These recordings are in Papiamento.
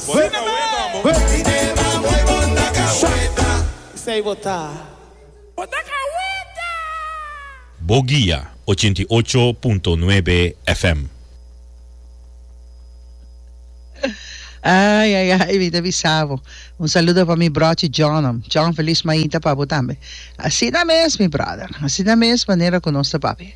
Sina me! Bo guia ochenta i ocho punto nuebe FM. Ai ai ai mi ta bisabo un saludo pa mi brochi Johnam John feliz mainta pa bo tambe asina mes mi brother asina mes manera cu nos ta papia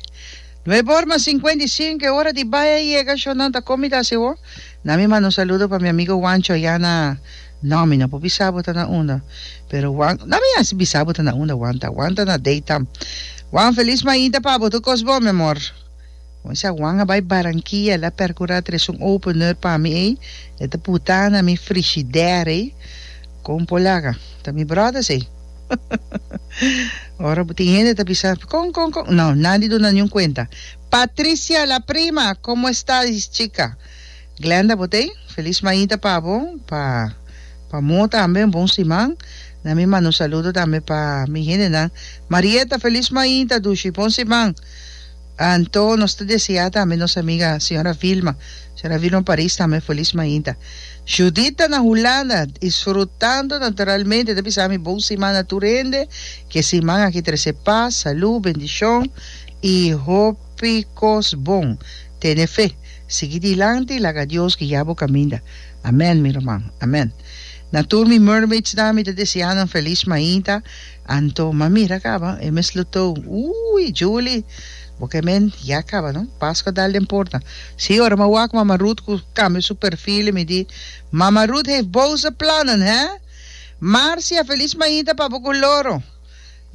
nuebe or mas cincuenta y cinco e ora di bay a yega sho nan ta comida si ho Na mi manda un saludo pa mi amigo Juancho ayá na No, mi no por bisa bo ta na unda. Pero Juan, na mi hasi bisa bo ta na unda, Juan ta. Juan ta na Deitam. Juan, Feliz Mainta pa bo, tur cos bon, mi amor. Cuminsa Juan a bai Barranquilla, el a percura tres un opener pa mi ey, e ta puta na mi frigider ey, con por laga. Ta mi brothers ey. Ora bo tin hende ta bisa, con, con, con, no, nandi duna niun cuenta. Patricia la prima como estadis chica. Glenda bo tey feliz mañita pa bo pa pa mo tambe un bon siman na mi mando un saludo tambe pa mi hendenan Marieta feliz mañita dushi bon siman anto nos ta desea tambe nos amiga señora Vilma señora Vilma Paris tambe feliz mañita Judith ta na Hulanda disfrutando naturalmente ta bisa mi bon siman na tur hende ke siman aki trece paz salud bendicion I hopi kos bon. Tene fe. Sigui dilanti i laga Dios guia bo kaminda. Amèn, mi ruman. Amèn. Na tur mi mermaidsnan mi ta deseá nan felis mainta. Anto, m'a mira kaba, e mes lutó. Ui, Julie, bo ke men ya kaba no? Paskua dal den porta. Sí, ora m'a wak Mama Ruth ku kambia su perfil i mi di, Mama Ruth heeft boze plannen, hè? Marcia, felis mainta pa bo ku Loro.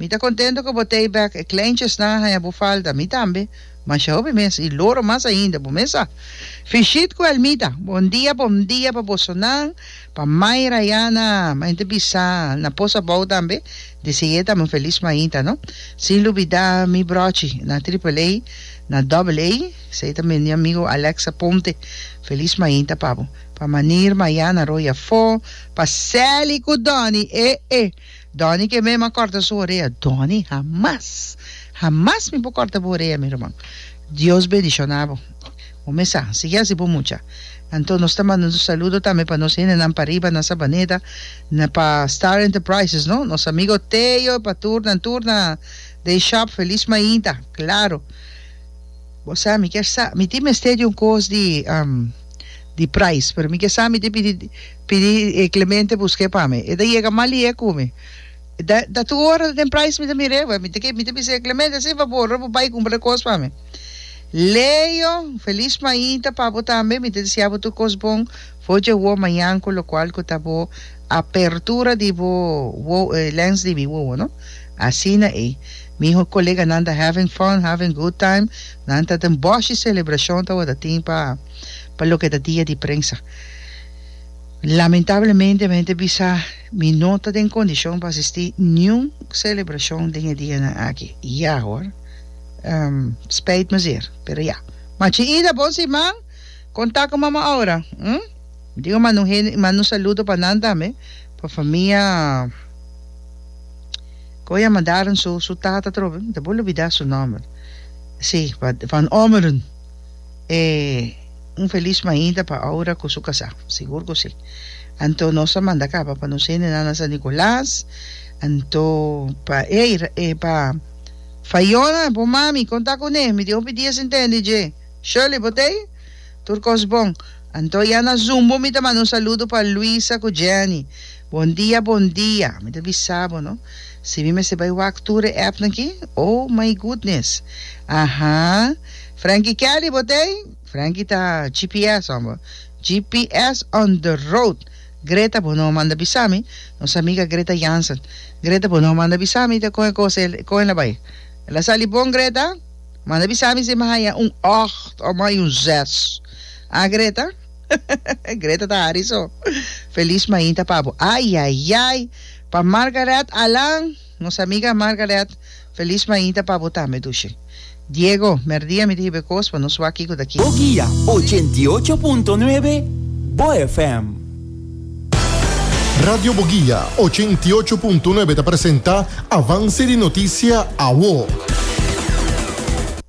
Mi ta contento cu bo take back e kleinchesnan a haña bo falta, mi tambe, masha hopi mes y loro mas ainda, bo mes a. Fishit cu Elmita, bon dia bon dia pa bosonan, pa Mai Rayana, ma ente bisa na pos abou tambe, di sigue ta un feliz mainta no, sin lubida mi brochi na triple A, na double A, esey ta mi amigo Alex Aponte, feliz mainta pa bo, pa Manir Mayana Roy afó, pa Sally cu Donny, eh eh. Donny ke mema kòrta su orea. Donny hamas hamas mi por kòrta bo orea mi ruman Dios bendishona bo bo me sa sigui asi bo mucha anto nos ta manda un saludo tambe pa nos hendenan pa riba na Sabaneta na pa Star Enterprises no nos amigo Teo pa tur nan tur na den shòp Feliz Mainta klaro bo sa mi kèr sa mi tin mester di un kos di di prais pero mi ke sa mi tin pidi. Pidi e Clemente busk'e pa mi. E ta yega malié ku mi. Da, da tur ora den price mi ta mir'é, wè. Mi ta ke, mi ta bis'é, Clemente, hasi e fabor ora bo bai kumpra e kos pa mi. Leo, Feliz mainta pa bo tambe. Mi ta deseabo tur kos bon for dje wou mañan ku lokual ku ta bo apertura di bo wou, e lens di mi wowo, no? Asina ei. Mi ho koleganan ta having fun, having good time. Nan ta den boshi selebrashon ta wòrdu tin pa, pa loke ta dia di prensa. Lamentablemente mi hende bisa mi no ta den condicion pa asisti niun celebracion den e dianan aki. Ya hoor. Um, spijt me zeer, pero ya. Machi Ida, bon siman! Con ta cu mama Aura? Hm? Digo manda un hende, manda un saludo pa nan tambe, pa famia con a mandaron su, su tata trobe, ta por lubida su nomber. Si, pa Van Ommeren. e un feliz mainta pa Aura cu su casa. Sigur cu si. Anto nos a manda caba pa nos hende na San Nicolas. Anto pa e, e pa Fayona, bo mami, conta cu ne. Mi di hopi dies intendi dje. Shirley, bo tey? Tur cos bon. Anto ya na Zumbo mi ta manda un saludo pa Luisa cu Jenny. Bon dia bon dia, mi ta bisa bo no si mi mester bai wak tur e app naki, oh my goodness, aha Frankie Kelly bo t'ei? Frankie ta GPS homber, GPS on the road, Greta bo no manda bisa mi, nos amiga Greta Jansen, Greta bo no manda bisa mi ta con e cosa el con el a bai, el a sali bon Greta? manda bisa mi si mi haya un ocht o mi haya un zes, ah Greta? Greta ta hari so. Feliz mainta pa bo. Ayayay! Pa Margaret Alan, nos amiga Margaret, feliz mainta pa bo tambe dushi. Diego, merdia mi ta hibe kos pa nos wak kiko ta ki. Boguia ochenta i ocho punto nuebe bo FM. Radio Boguia ochenta i ocho punto nuebe ta presenta Avance di Noticia, Awo.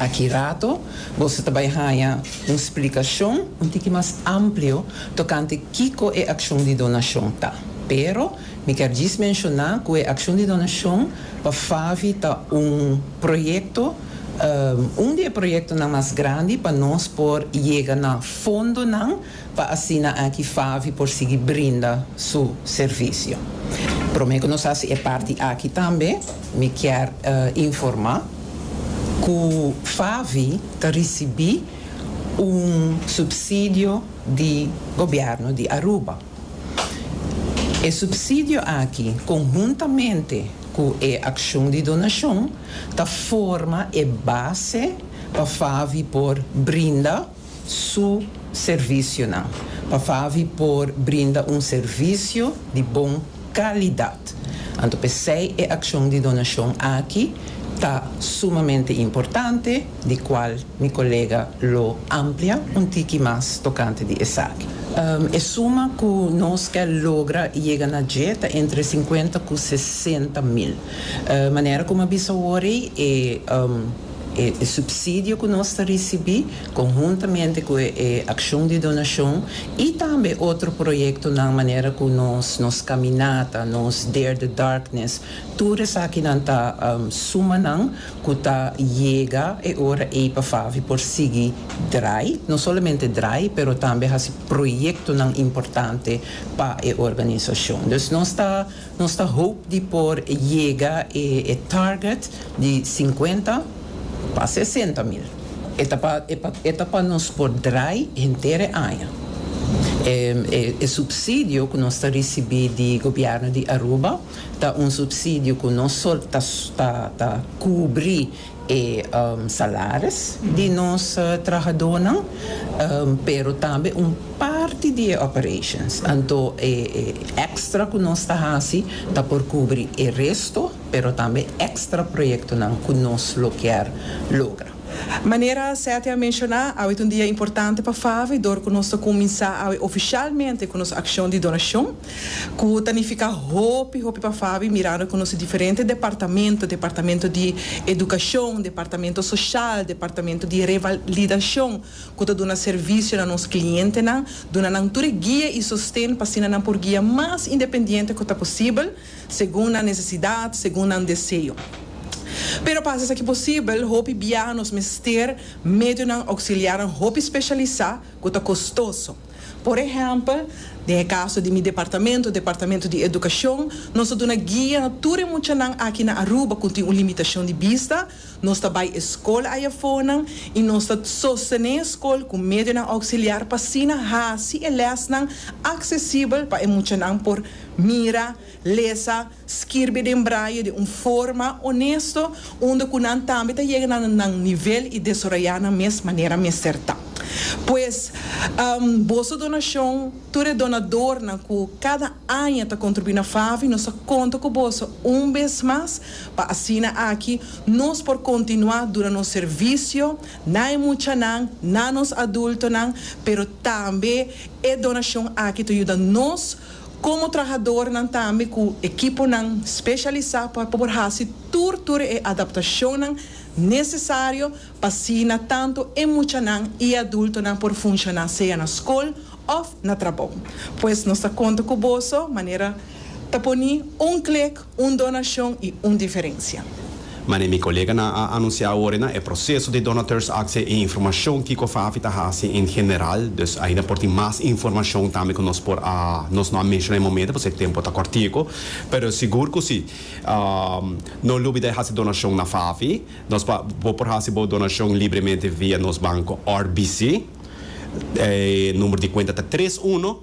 Aki rato boso ta bai haña un splikashon un tiki mas amplio tokante kiko e akshon di donashon ta, pero mi kier djis menshoná ku e akshon di donashon pa FAVI ta un proyekto, un di e proyektonan mas grandi pa nos por yega na fondonan pa asina aki Favi por sigui brinda su servisio. Prome ku nos hasi e parti aki tambe, mi kier informá ku Favi ta risibí un supsidio di gobièrnu di Aruba. E supsidio aki, konhuntamente ku e akshon di donashon, ta forma e base pa Favi por brinda. su servisionan pa Favi por brinda un servisio di bon kalidat. Anto p'esei e akshon di donashon aki ta sumamente importante, di kual mi kolega lo amplia un tiki mas tokante di esaki. E suma ku nos ke logra yega na dje ta entre sinkuenta ku sesenta mil. Manera ku mi a bisa awor ei, e. E supsidio ku nos ta risibí, konhuntamente ku e akshon di donashon i tambe otro proyektonan manera ku nos nos kaminata, nos Dare the Darkness, tur esakinan ta sumanan ku ta yega e ora ei pa Favi por sigui drai, no solamente drai, pero tambe hasi proyektonan importante pa e organisashon. Dus nos ta Nos ta hoop di por yega e e target di sinkuenta pa sesenta mil. E ta pa e pa e ta pa nos por draai henter e aña. E e e supsidio ku nos ta risibí di gobièrnu di Aruba ta un supsidio ku no solo ta ta ta kubrí e salaris di nos trahadonan, pero tambe un parti di e operations. Anto e extra cu nos ta haci ta por cubri e resto, pero tambe extra proyectonan cu nos lo kier logra. Manera Seth a menciona, awe ta un dia importante pa Favi dor cu nos ta cuminsa awe oficialmente cu nos accion di donacion. Ku ta nifiká hopi hopi pa Fabi mirando ku nos diferente departamento, departamento di edukashon, departamento soshal, departamento di revalidashon ku ta duna servisio na nos klientenan, duna nan tur e guia i sosten pa asina nan por guia mas independiente ku ta posibel, segun nan nesesidat, segun nan deseo. Pero pa hasi esaki posibel, hopi biaha nos mester medionan ouksiliarnan hopi speshalisá, cu ta costoso. Por ehempel, den e caso di mi departamento, departamento di educacion, nos a duna guia tur e muchanan aki na Aruba cu tin un limitacion di bista, nos ta bay e scol ayafonan y nos ta sostene e scol cu medionan auxiliar pa asina haci e lesnan accesibel pa e muchanan por mira, lesa, Skirbi den braye di un forma onesto unda ku nan tambe ta yega na nan nivel i desaroyá nan mes manera mester ta. Pues, boso donashon, tur e donadornan ku kada aña ta kontribuí na FAVI, nos ta konta ku boso un bes mas pa asina aki nos por kontinuá duna nos servisio na e muchanan, na nos adultonan, pero tambe e donashon aki ta yuda nos. Komo trahadornan tambe ku ekiponan speshalisá pa por hasi tur tur e adaptashonnan nesesario pa asina tantu e muchanan i e adultonan por funshoná sea na skol òf na trabou. Pues nos ta konta ku boso manera ta poni un klik. Un donashon i un diferensia. Manera mi koleganan a anunsiá awor na e proseso di donateurs akse e informashon kiko Fafi ta hasi en general, dus ainda por tin mas informashon tambe ku nos por a nos no a menshoná e momento pasobra e tempu ta kòrtiku, pero sigur ku si. No lubida e hasi donashon na Fafi. Nos por bo por hasi bo donashon libremente via nos banko RBC. E number di kuenta ta tres uno.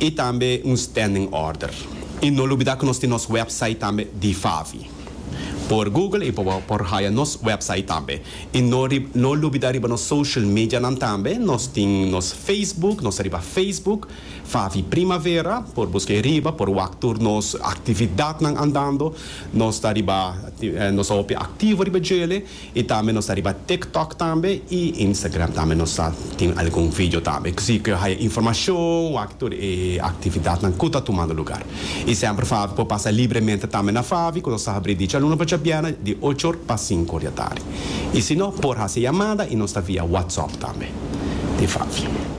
y tambe un standing order. Y no lubida cu nos tin nos website tambe di Favi. Por Google y por haya nos website tambe. Y no no lubida riba nos social medianan tambe, nos tin nos Facebook, nos ta riba Facebook, Favi Primavera, por busca ahi riba, por wak tur nos actividadnan andando, nos ta riba, nos ta hopi activo riba djele. Y tambe nos ta riba TikTok tambe y Instagram tambe nos ta tin algun video tambe. Cosi cu yo haya informacion wak tur e actividadnan cu ta tumando lugar. Y semper Favi por pasa libremente tambe na Favi cu nos ta habri di djaluna pa djabièrnè di ocho or pa sinku or di atardi. Y si no por haci yamada y nos ta via WhatsApp tambe di Favi.